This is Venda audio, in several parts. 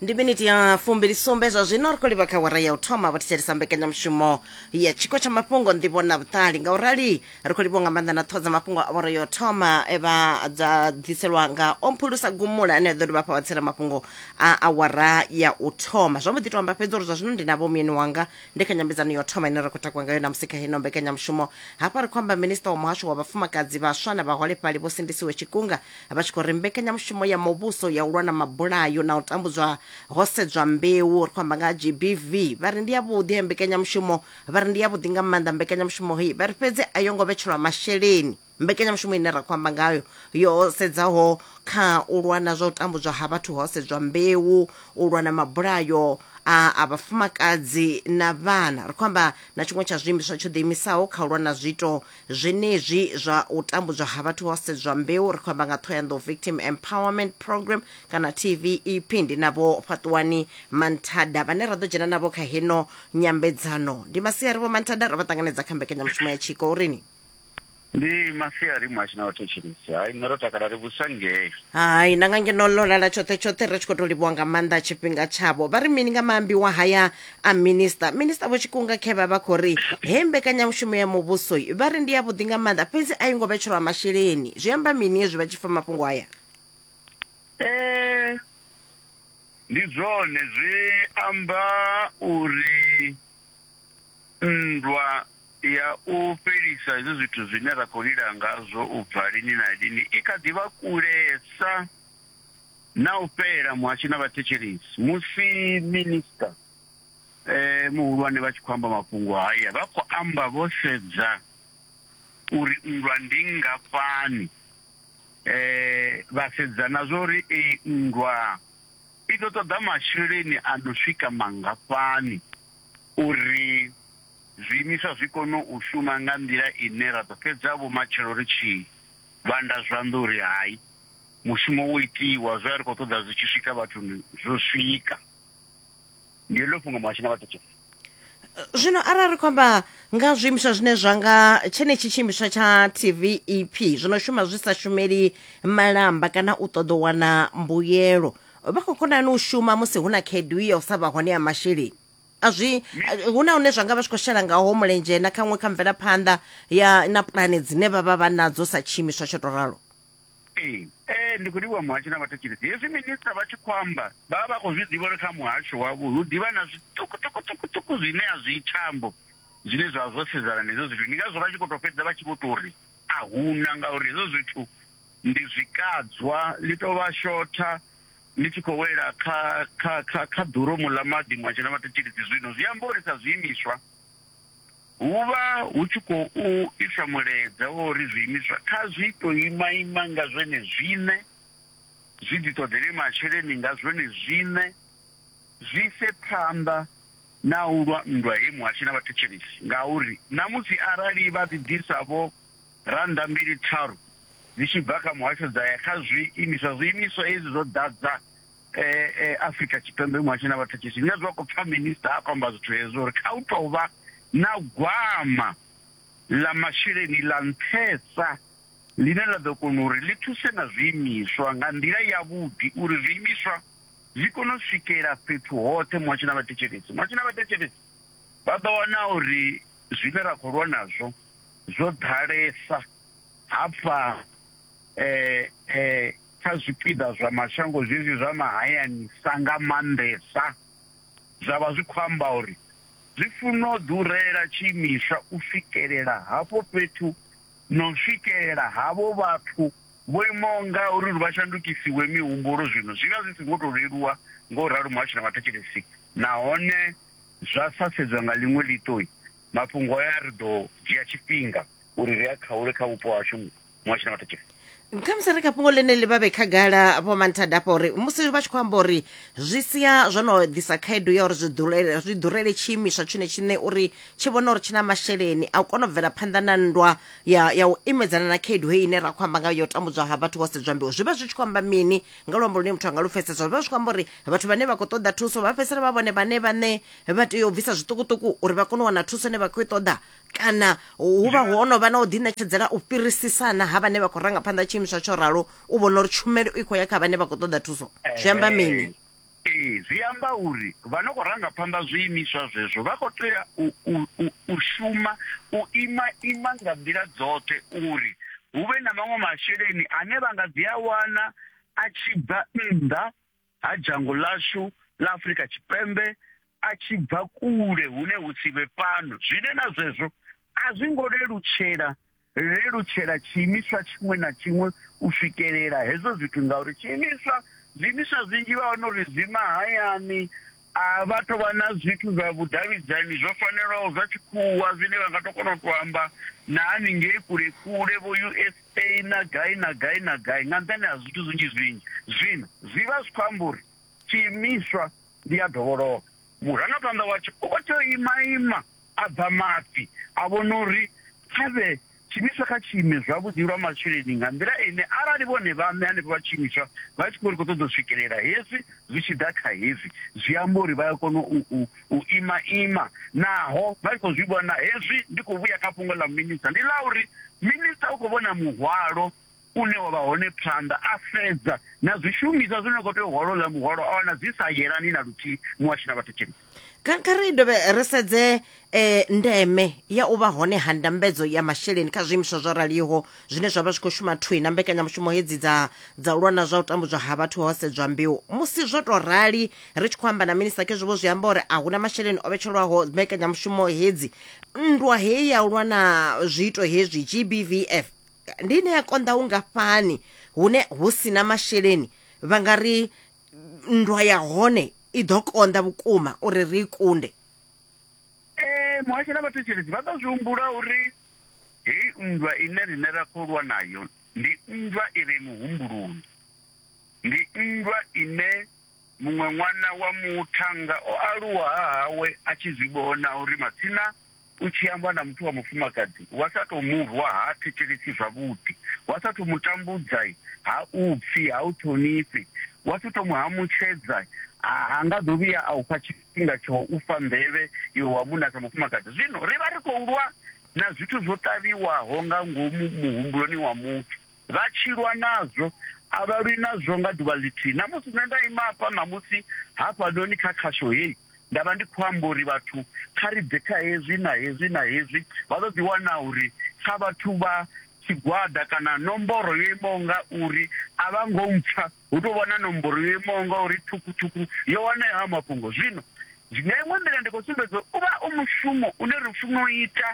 ndi miniti ya fumbili sumbe zwa zwino ri khou livha kha wara ya u thoma vha thetshelesa mbekanyamushumo ya tshiko tsha mafhungo nḓivho na vhuṱali nga u rali ri khou livha nga maanḓa na ṱhoho dza mafhungo a wara ya u thoma e vha dza ḓiselwa nga omphulusa gumula ane a ḓo dovha fha vhatsela mafhungo a awara ya u thoma zwo mbo ḓi to amba fhedzi uri zwa zwino ndi na vhomuyeni wanga ndi kha nyambedzano ya u thoma ine ra khou takwa ngayo namusi kha heno mbekanyamushumo hafha ri khou amba minista wa muhasho wa vhafumakadzi vhaswa na vhaholefhali vho sindisiwe tshikunga vha tshi khou ri mbekanyamushumo ya muvhuso ya u lwa na mabulayo na u tambudzwa ho sedzwa mbeu ri khou amba nga ha gbv vha ri ndi yavhuḓi he mbekanyamushumo vha ri ndi yavhuḓi nga maanḓa mbekanyamushumo hei vha ri fhedzi a yo ngo vhetshelwa masheleni mbekanyamushumo ine ra khou amba ngayo yo sedzaho kha u lwa na zwa u tambudzwa ha vhathu ho sedzwa mbeu u lwa na mabulayo a a vhafumakadzi na vhana ri khou amba na tshiṅwe tsha zwiimiswa tsho ḓiimisaho kha u lwa na zwiito Zwenezwi zwa u tambudzwa ha vhathu ho sedzwa mbeu, ri khou amba nga Thohoyanḓou Victim Empowerment Program kana TVEP. Ndi na Vho Fhaṱuwani Manthada vhane ra ḓo dzhena navho kha heno nyambedzano. Ndi masiari Vho Manthada, ro vha ṱanganedza kha mbekanyamushumo ya Tshiko uri ni. Ndi masiari muhashi na vhathetshelesi. Hai nṋe ro takala ri vhusa ngei. Hai na nga ngeno ḽo lala tshoṱhe tshoṱhe ri tshi khou tou livhuwa nga maanḓa tshifhinga tshavho. Vha ri mini nga maambiwa haya a minista minista vho tshikunga khe vha vha khou ri he mbekanyamushumo ya muvhuso vha ri ndi ya vhuḓi nga maanḓa fhedzi a yi ngo vhetshelwa masheleni zwi amba mini hezwi vha tshi fa mafhungo aya eh, ndi zwone zwi amba uri nndwa ya u fhelisa hezwi zwithu zwine ra khou lila ngazwo u bva lini na lini i kha ḓi vha kulesa Na u fhelela muhasho na vhathetshelesi musi Minisiṱa Muhulwane vha tshi khou amba mafhungo haya vha khou amba vho sedza uri nndwa ndi nngafhani, vha sedza na zwa uri iyi nndwa i ḓo ṱoḓa masheleni a no swika mangafhani uri zwiimiswa zwi kone u shuma nga nḓila ine ra ḓo fhedza vhomatshelo ri tshi vhanda zwanḓa uri hai. mushumo wo itiwa zwe a ri khou ṱoḓa zwi tshi swika vhathuni zwo swika ndi heḽo fhungo muhashi na vhathetshe zwino arali ri khou amba nga zwiimiswa zwine zwa nga tshenetshi tshiimiswa tsha tv ep zwi no shuma zwi sa shumeli malamba kana u ṱoḓa u wana mbuyelo vha khou konani u shuma musi hu na khaedu ya u sa vha hone ya masheleni a zwi hu na hune zwa nga vha zwi khou shela ngaho mulenzhe na khaṅwe kha mvelaphanḓa ya na pulane dzine vha vha vha nadzo sa tshiimiswa tsho to ralo Ee, ee, ndi khou livhuwa muhasho na vhathetshelesi. Hezwi minisiṱa vha tshi khou amba, vha vha vha khou zwi ḓivha uri kha muhasho wavho hu ḓi vha na zwiṱukuṱukuṱukuṱuku zwine a zwi thambo zwine zwa vha zwo sedzana na hezwo zwithu. Ndi ngazwo vha tshi khou tou fhedza vha tshi vho tou ri a hu na ngauri hezwo zwithu ndi zwikadzwa, ḽi tou vha shotha ḽi tshi khou wela kha kha kha kha ḓoromu ḽa maḓi muhasho na vhathetshelesi. Zwino zwi amba uri sa zwiimiswa, Hu vha hu tshi khou isa mulaedza wa uri zwiimiswa kha zwi tou imaima nga zwone zwiṋe, zwi ḓiṱoḓele masheleni nga zwone zwiṋe, zwi ise phanḓa na u lwa nndwa he muhashi na vhathetshelesi ngauri ṋamusi arali vha ḓi ḓisa vho rannda mbili tharu dzi tshi bva kha muhasho dza ya kha zwi imiswa, zwi imiswa hezwi zwo ḓadza eh, eh, afrika tshipembe muhasho na vhathetshishi nṋe zwa khou pfa minista a khou amba zwithu hezwo uri kha u tou vha na gwama ḽa masheleni ḽa nṱhesa ḽine ḽa ḓo kona uri ḽi thuse na zwiimiswa nga nḓila yavhuḓi uri zwiimiswa zwi kone u swikela fhethu hoṱhe muhasho na vhathetshelesi muhasho na vhathetshelesi vha ḓo wana uri zwine ra khou lwa nazwo zwo ḓalesa hafha eh eh Kha zwipiḓa zwa mashango zwezwi zwa mahayani-sa nga maanḓesa, zwa vha zwi khou amba uri zwi funa u ḓurela tshiimiswa u swikelela hafho fhethu na u swikelela havho vhathu vho imaho nga uri uri vha shandukisiwe mihumbulo zwino zwi vha zwi songo tou leluwa nga u ralo muhasho na vhathetshelesi nahone zwa sa sedzwa nga ḽiṅwe ḽiṱo mafhungo aya ri ḓo dzhia tshifhinga uri ri a khaule kha vhupo hashu. muhasho na maṱhetshe khamusi ri kha fhungo ḽeneḽi vha vhe khagala vho manthada afha uri musi vha tshi khou amba uri zwi sia zwo no ḓisa khaedu ya uri zwi ḓurele- zwi ḓurele tshiimiswa tshone tshiṋe uri tshi vhone uri tshi na masheleni a u kona u bvela phanḓa na nndwa ya ya u imedzana na khaedu heyi ine ra khou amba nga yo tambudzwa ha vhathu vho sedzwa mbeu zwi vha zwi tshi khou amba mini nga luambo lune muthu anga lu pfesesa zwi vha zwi khou amba uri vhathu vhane vha khou ṱoḓa thuso vha fhedzisela vha vhone vhane vhane vha tea u bvisa zwiṱukuṱuku uri vha kone u wana thuso ine vha khou i ṱoḓa kana hu vha ho no vha na u ḓiṋetshedzela u fhirisisana ha vhane vha khou ranga phanḓa tshiimiswa tsho ralo u vhona uri tshumelo i khou ya kha vhane vha khou ṱoḓa thuso zwi amba mini ee zwi amba uri vha no khou ranga phanḓa zwiimiswa zwezwo vha khou tea u shuma u ima ima nga nḓila dzoṱhe uri hu vhe na maṅwe masheleni ane vha nga dzi a wana a tshi bva nnḓa ha dzhango ḽashu ḽa Afrika Tshipembe a tshi bva kule hune hu si vhe fhano zwine na zwezwo a zwi ngo lelutshela lelutshela tshiimiswa tshiṅwe na tshiṅwe u swikelela hezwo zwithu ngauri tshiimiswa zwiimiswa zwinzhi vha wana uri zwi mahayani A vha tou vha na zwithu zwa vhudavhidzani zwo fanelaho zwa tshikhuwa zwine vha nga tou kona u tou amba na haningei kule-kule, vho-USA na gai na gai na gai, nga nṱhani ha zwithu zwinzhi-zwinzhi. Zwino, zwi vha zwi khou amba uri tshiimiswa ndi a dovholoka. Murangaphanḓa watsho u khou tea u ima-ima a bva mafhi, a vhona uri kha vhe tshiimiswa kha tshi ime zwavhuḓi lwa masheleni nga nḓila ine arali vhone vhaṋe hanefho vha tshiimiswa vha tshi khou ri khou ṱoḓa u swikelela hezwi zwi tshi ḓa kha hezwi, zwi amba uri vha ya kona u, u, u ima ima. Naho vha tshi khou zwi vhona hezwi, ndi khou vhuya kha fhungo ḽa Minista, ndi ḽa uri Minista u khou vhona muhwalo une wa vha hone phanḓa, a sedza na zwishumiswa zwine na khou tea u hola uḽa muholo, a wana zwi sa yelani na luthihi, muhashi na vhathetshelesi. Kha kha ri dovhe ri sedze eh, ndeme ya u vha hone ha ndambedzo ya masheleni kha zwiimiswa zwo raliho zwine zwa vha zwi khou shuma thwi na mbekanyamushumo hedzi dza dza u lwa na zwa u tambudzwa ha vhathu ho sedzwa mbeu musi zwo tou rali ri tshi khou amba na minista khezwi vho zwi amba uri a huna masheleni o vhetshelwaho mbekanyamushumo hedzi nndwa heyi ya u lwa na zwiito hezwi gbvf Ndi ine ya konḓa hungafhani hune hu si na masheleni vha nga ri nndwa ya hone i ḓo konḓa vhukuma uri ri i kunde? Ee, muhasho na vhathetshelesi vha ḓo zwi humbula uri heyi nndwa ine riṋe ra khou lwa nayo ndi nndwa i re muhumbuloni. Ndi nndwa ine muṅwe ṅwana wa muthannga o aluwa ha hawe a tshi zwi vhona uri matsina U tshi amba na muthu wa mufumakadzi wa sa tou mu rwa ha thetshelesi zwavhuḓi, wa sa tou mu tambudza ha u pfi, ha u ṱhonifhi, wa si tou mu hamutshedza, ha nga ḓo vhuya a u fha tshifhinga tsha u fha nḓevhe iwe wa munna sa mufumakadzi. Zwino ri vha ri khou lwa na zwithu zwo ṱavhiwaho nga ngomu muhumbuloni wa muthu. Vha tshi lwa nazwo, a vha lwi nazwo nga ḓuvha ḽithihi. Ṋamusi nṋe nda ima hafha ṋamusi hafhanoni kha khasho heyi, nda vha ndi khou amba uri vhathu kha ri bve kha hezwi na hezwi na hezwi, vha ḓo ḓi wana uri sa vhathu vha tshigwada kana nomboro yo imaho nga uri a vha ngo mpfa, hu tou vha na nomboro yo imaho nga uri ṱhukhu-ṱhukhu yo wana hayo mafhungo. Zwino nga iṅwe nḓila ndi khou sumbedza uri u vha u mushumo une ri funa u ita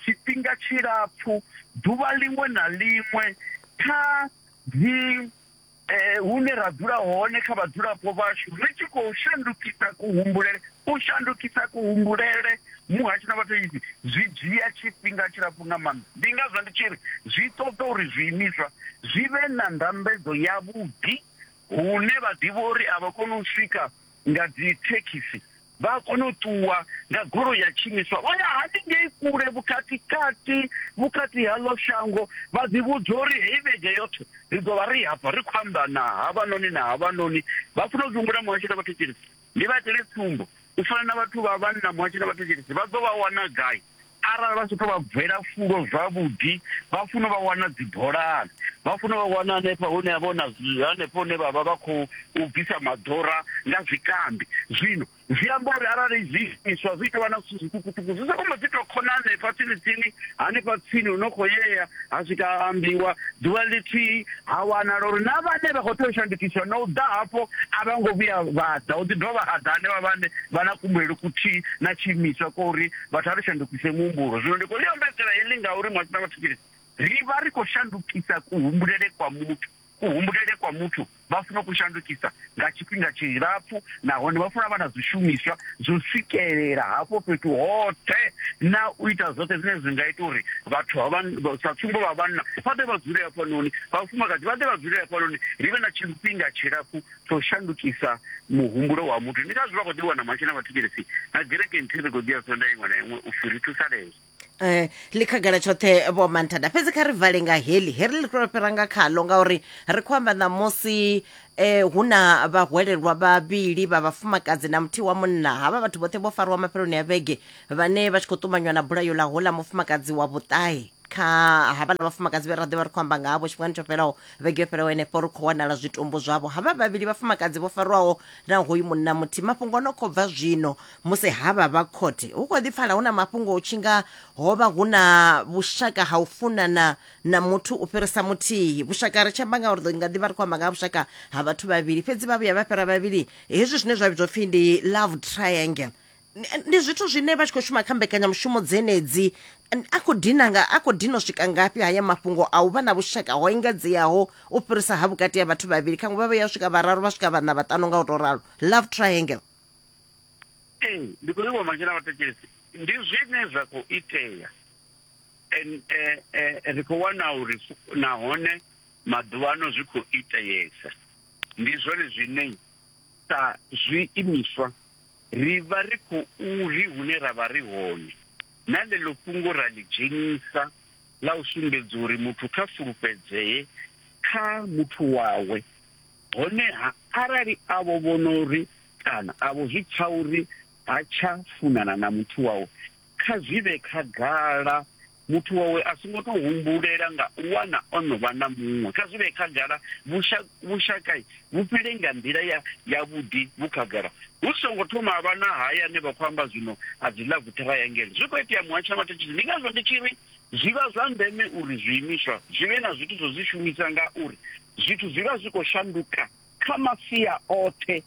tshifhinga tshilapfu, ḓuvha ḽiṅwe na ḽiṅwe kha dzi. eh, hune ra dzula hone kha vhadzulapo vhashu ri tshi khou shandukisa kuhumbulele u shandukisa kuhumbulele muhasho na vhathu izi zwi dzhia tshifhinga tshilapfu nga maanḓa ndi ngazwo ndi tshi ri zwi ṱoḓa uri zwiimiswa zwi vhe na ndambedzo yavhuḓi hune vha ḓivha uri a vha koni u swika nga dzi thekhisi Vha a kona u ṱuwa nga goloi ya tshiimiswa vha ya haningei kule vhukati-kati vhukati haḽo shango, vha ḓivhudza uri heyi vhege yoṱhe ri ḓo vha ri hafha ri khou amba na havhanoni na havhanoni. Vha funa u ḓi humbula muhashi na vhathetshelesi. Ndi vha itele tsumbo, u fana na vhathu vha vhanna muhashi na vhathetshelesi vha ḓo vha wana gai? Arali vha tshi tou vha bvela fulo zwavhuḓi, vha funa vha wana dzibolani, vha funa vha wana hanefha hune ha vha na hanefho hune vha vha vha khou bvisa maḓora nga zwikambi. Zwino zwi amba uri arali zwiimiswa zwi tou vha na zwithu zwiṱukuṱuku, zwi soko mbo ḓi tou khona hanefha tsini tsini, hanefha tsini hu no khou yea ha swika ha ambiwa ḓuvha ḽithihi, ha wanala uri na vhane vha khou tea u shandukiswa na u ḓa hafho a vha ngo vhuya vha ḓa, hu ḓi dovha ha ḓa hanevha vhane vha na kuhumbulele kuthihi na tshiimiswa kwa uri vhathu a ri shandukise muhumbulo zwino ndi khou ḽi ombedzela heḽi ngauri mwa sina vhathu tshile ri vha ri khou shandukisa kuhumbulele kwa muthu kuhumbulele kwa muthu vha funa ku shandukisa nga tshifhinga tshilapfu nahone vha funa vha na zwishumiswa zwo swikelela hafho fhethu hoṱhe na u ita zwoṱhe zwine zwi nga ita uri vhathu sa tsumbo vha vhanna vha ḓe vha dzule hafhanoni vhafumakadzi vha ḓe vha dzule hafhanoni ri vhe na tshifhinga tshilapfu tsho shandukisa muhumbulo wa muthu ndi ngazwi vha khou ḓivhiwa na matshe na vhathetshelesi na gereke nthihi ri khou ḓiya sonda iṅwe na iṅwe u fhiri thusalezwo um eh, ḽi khagala tshoṱhe vho manthada fhedzi kha ri vale nga heḽi heri ḽi tou fhira nga khaḽo ngauri ri khou amba ṋamusi eh hu na vhahwelelwa vhavhili vha vhafumakadzi na muthihi wa munna havha vhathu vhoṱhe vho fariwa mafheloni ya vhege vhane vha tshi khou ṱumanywa na bulayo ḽa hola mufumakadzi wa vhuṱahe kha havhala vhafumakadzi vhe ra ḓivha ri khou amba nga havho tshifhingani tsho fhelaho vhege yo fhiraho henefho ri khou wanala zwitumbu zwavho havha vhavhili vhafumakadzi vho farwaho na hoyu munna muthihi mafhungo o no khou bva zwino musi havha vha khothe hu khou ḓi pfala hu na mafhungo hu tshi nga ho vha hu na vhushaka ha u funana na muthu u fhirisa muthihi vhushaka ri tshi amba nga uri ḓo nga ḓi vha ri khou amba nga ha vhushaka ha vhathu vhavhili fhedzi vha vhuya vha fhira vhavhili hezwi zwine zwa vhidzwa pfhi ndi love triangle ndi zwithu zwine vha tshi khou shuma kha mbekanyamushumo dzenedzi a khou dina nga a khou dina u swika ngafhi haya mafhungo a u vha na vhushaka ho engedzeaho u fhirisa ha vhukati ha vhathu vhavhili khaṅwe vha vha ya swika vhararu vha swika vhana vhaṱanu nga u tou ralo love triangle ee ndi khou livhuwa mashina vhathekesi ndi zwine zwa khou itea and eh, eh, ri khou wana uri nahone maḓuvha ano zwi khou iteyesa ndi zwone zwine sa zwiimiswa, ri vha ri khou ri hune ra vha ri hone na ḽeḽo fhungo ra ḽi dzhenisa ḽa u sumbedza uri muthu kha fulufhedzee kha muthu wawe. Honeha arali a vho vhona uri kana a vho zwi pfa uri ha tsha funana na muthu wawe, kha zwi vhe khagala muthu wawe a songo tou humbulela nga u wana o no vha na muṅwe kha zwi vhe khagala vhushaka vhu fhile nga nḓila ya yavhuḓi vhu khagala hu songo thoma a vha na haya ane vha khou amba zwino a dzi love triangle zwi khou itea muhatsha mathetshizi ndi ngazwo ndi tshi ri zwi vha zwa ndeme uri zwiimiswa zwi vhe na zwithu zwo zwi shumisa nga uri zwithu zwi vha zwi khou shanduka kha masia oṱhe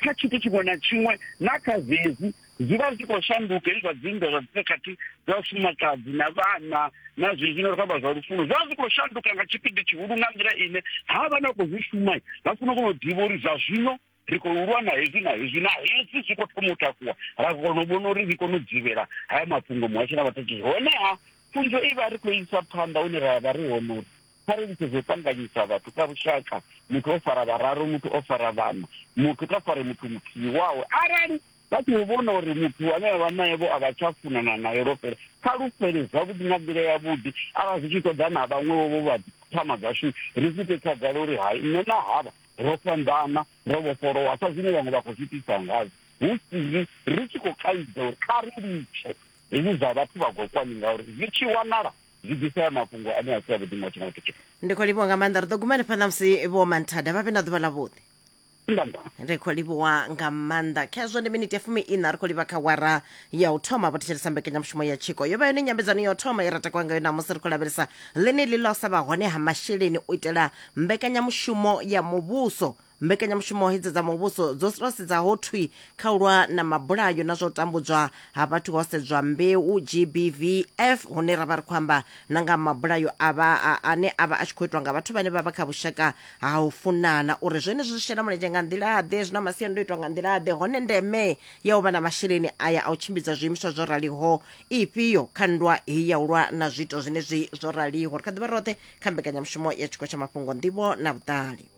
kha tshithu tshiṅwe na tshiṅwe na kha zwezwi zwi vha zwi khou shanduka hezwi zwa dzinndwa zwa dzikhakhathi dza vhafumakadzi na vhana na zwezwi no ri khou amba zwa lufuno zwi vha zwi khou shanduka nga tshipidi tshihulu nga nḓila ine ha vha na khou zwi shuma vha funa u kona u ḓivha uri zwa zwino ri khou lwa na hezwi na hezwi na hezwi zwi khou thoma u takuwa ra kona u vhona uri ri kone u dzivhela haya mafhungo muhasho na vhatatshisi honeha pfunzo i vha ri khou isa phanḓa hune ra vha ri hone uri kha ri litshe zwo ṱanganyisa vhathu kha lushaka muthu o fara vhararu muthu o fara vhana muthu kha fare muthu muthihi wawe arali vha tshi vhona uri muthu ane avha naye vho a vha tsha funana naye lwo fhela kha lu fhele zwavhuḓi nga nḓila yavhuḓi arali zwi tshi ṱoḓa na vhaṅwewo vho vha thama dzashu ri zwi ite khagala uri hai nṋe na havha ro fhambana ro vhofholowa sa zwine vhaṅwe vha khou zwi tisa ngazwo hu sili ri tshi khou kaidza uri kha ri litshe hezwi zwa vhathu vha gokwani ngauri zwi tshi wanala zwi bvisa mafhungo ane a si avhuḓi nga tshiṅwe tshithu ndi khou livhuwa nga maanḓa ri ḓo guma hanefha ṋamusi vho manthada vha vhe na ḓuvha ḽa vhuḓi ndamba ri khou livhuwa nga maanḓa khezwo ndi miniti ya fumi ina ri khou livha kha wara ya u thoma vho thetshelesa mbekanyamushumo ya tshiko yo vha yone nyambedzano ya u thoma ye ra takuwa ngayo namusi ri khou lavhelesa ḽeneḽi ḽa u sa vha hone ha masheleni u itela mbekanyamushumo ya muvhuso Mbekanyamushumo hedzi dza muvhuso dzo tou sedza ho thwi kha u lwa na mabulayo na zwa u tambudzwa ha vhathu ho sedzwa mbeu GBVF hune ra vha ri khou amba na nga mabulayo a vha ane a vha a tshi khou itwa nga vhathu vhane vha vha kha vhushaka ha u funana uri zwenezwi zwi shela mulenzhe nga nḓila-ḓe zwi na masiandoitwa nga nḓila-ḓe hone ndeme ya u vha na masheleni aya a u tshimbidza zwiimiswa zwo raliho ifhio kha nndwa heyi ya u lwa na zwiito zwenezwi zwo raliho ri kha ḓivha roṱhe kha mbekanyamushumo ya tshiko tsha mafhungo nḓivho na vhuṱali